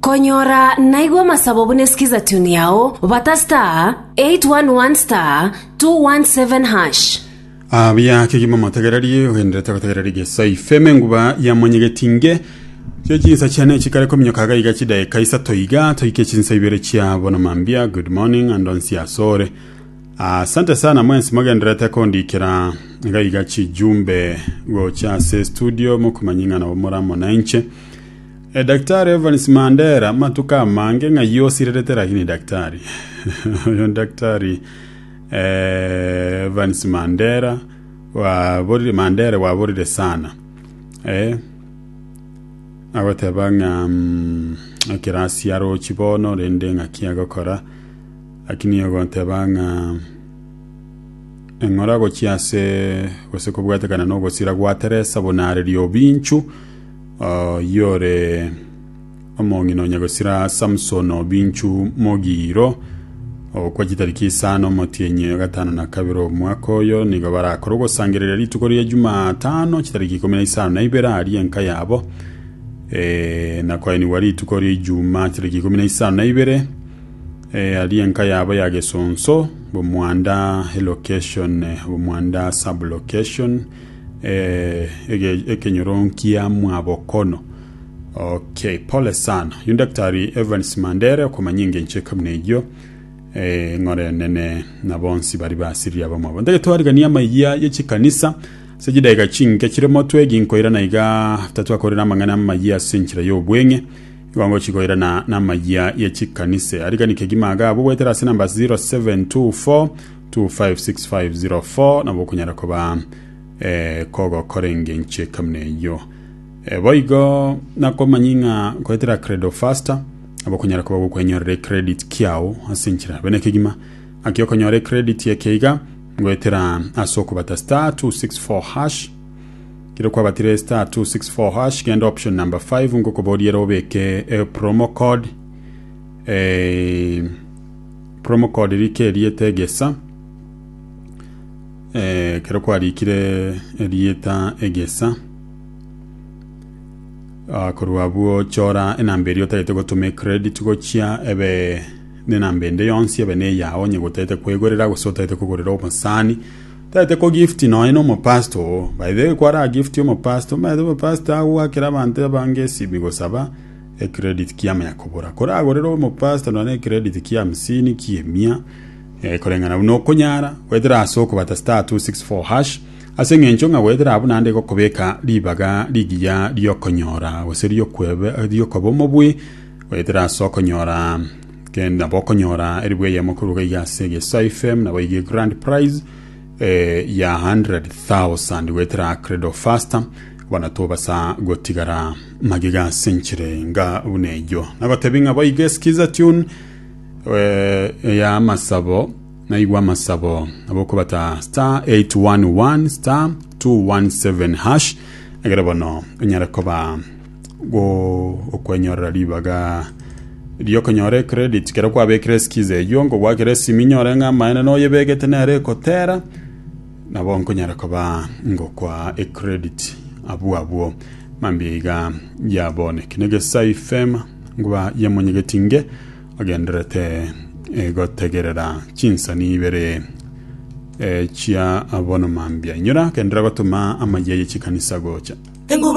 Konyora naigwe amasabo buna eskiza tune yao, bata *811*217#. Abia kegima motegererie ogenderete gotegereria geso ifeme enguba ya monyegetinge gie chinsa chiane chikare kominyoka iga iga chidaeka isato iga toike chinsa ibere chia bono mambia good morning and onsi asore asante sana mwensi mogenderete kondikera iga iga chijumbe gocha ase studio mokomanying'ana omora monanche Daktari Evans Mandera matuko amange ng'a yosirerete lakini daktari oyo daktari eh, Evans Mandera waborire Mandera waborire sana eh, agoteba ng'a mm, ekirasi arochi bono rende ng'aki agokora lakini ogoteba ng'a eng'ora gochia ase gose kobwatekana nogosira gwa Teresa buna are riobinchu Oyore omong'ina o Nyagosira Samson Obinchu Mogiro okwa chitariki isano omotienyi o gatano na kabere omwaka oyo nigo barakore ogosangereria rituko ria Jumatano chitariki ikomi na isano na ibere aria enka yabo eh, na koenigwa rituko ria Ijumaa chitariki ikomi na isano na ibere eh, aria enka yabo ya Gesonso Bomwanda location eh, Bomwanda sub location ekenyoro nkia mwabokono. Okay, pole sana. Yu Daktari Evans Mandere okomanya engencho eka buna eyio. Eh, ng'ore nene na bonsi bari basiriri abamwabo. Ndage twarigania amaigia ye chikanisa ase chidaika chinke chire motwe ginkoira na iga tatwakorera amang'ana amaigia ase enchera y'obweng'e. Igongo chikoira na na amaigia ye chikanisa. Arigani kegima aga abo gwetera ase namba 0724 256504 nabo okonyara koba eh, kogokora engencho ekamuna eyio Eh, boigo nakomanya ng'a goetera credo faster nabo okonyara koba gokwenyorera ecredit kiao ase enchera bene kegima aki okonyora ecredit eke iga goetera ase okobata star 264 hash kero kwabatire star 264 hash genda option number 5 ngokoboriere obeke eh, promo code eh, Promocode rike erieta egesa eh, kero kwarikire erieta egesa Ah, korwa abwo chora enamba eria otagete gotuma ecredit gochia ebe nenamba ende yonsi ebe neyao onye gotete kwegorera gose otagete kogorera omosani otagete ko gift nonya na omopasta oo by the way kwara gift omopasta omanyete omopasta agwakera abanto abange esimi gosaba Ecredit kiamo ya kogora. Koragorere omopasta nonye ecredit kia hamsini kia emia eh, koreng'ana buna okonyara goetera ase okobata star 264 hash ase eng'encho ng'a goetera abwo naende egokobeka ribaga rigiya riokonyora gose riokwebe riokoba omobui goetera ase okonyora kende nabo okonyora eribu eyemo koruga iga ase egesae fm nabo iga grand prize eh, ya 100,000 goetera credo faster bono tobasa gotigara Magega ase enchera enga buna eyio. Nagotebia ng'a boigo eskiza tune eh, ya amasabo naigwa amasabo abokobata star 811 star 217 hash egere bono onyare koba go okwenyorera ribaga riokonyora ecredit kero kwabekire eskiza eyio ngogwakire esimi nyore ng'a amaene noyebegete nere ekotera Nabo nkonyara koba ngokwa ecredit abwo abwo mambia iga yaboneke negesai fema ngoba yamonyegeti nge ogenderete eh, gotegerera chinsani ibere eh, chia abono mambia inyora agendera gotuma amayia ye chikanisa gocha Enguba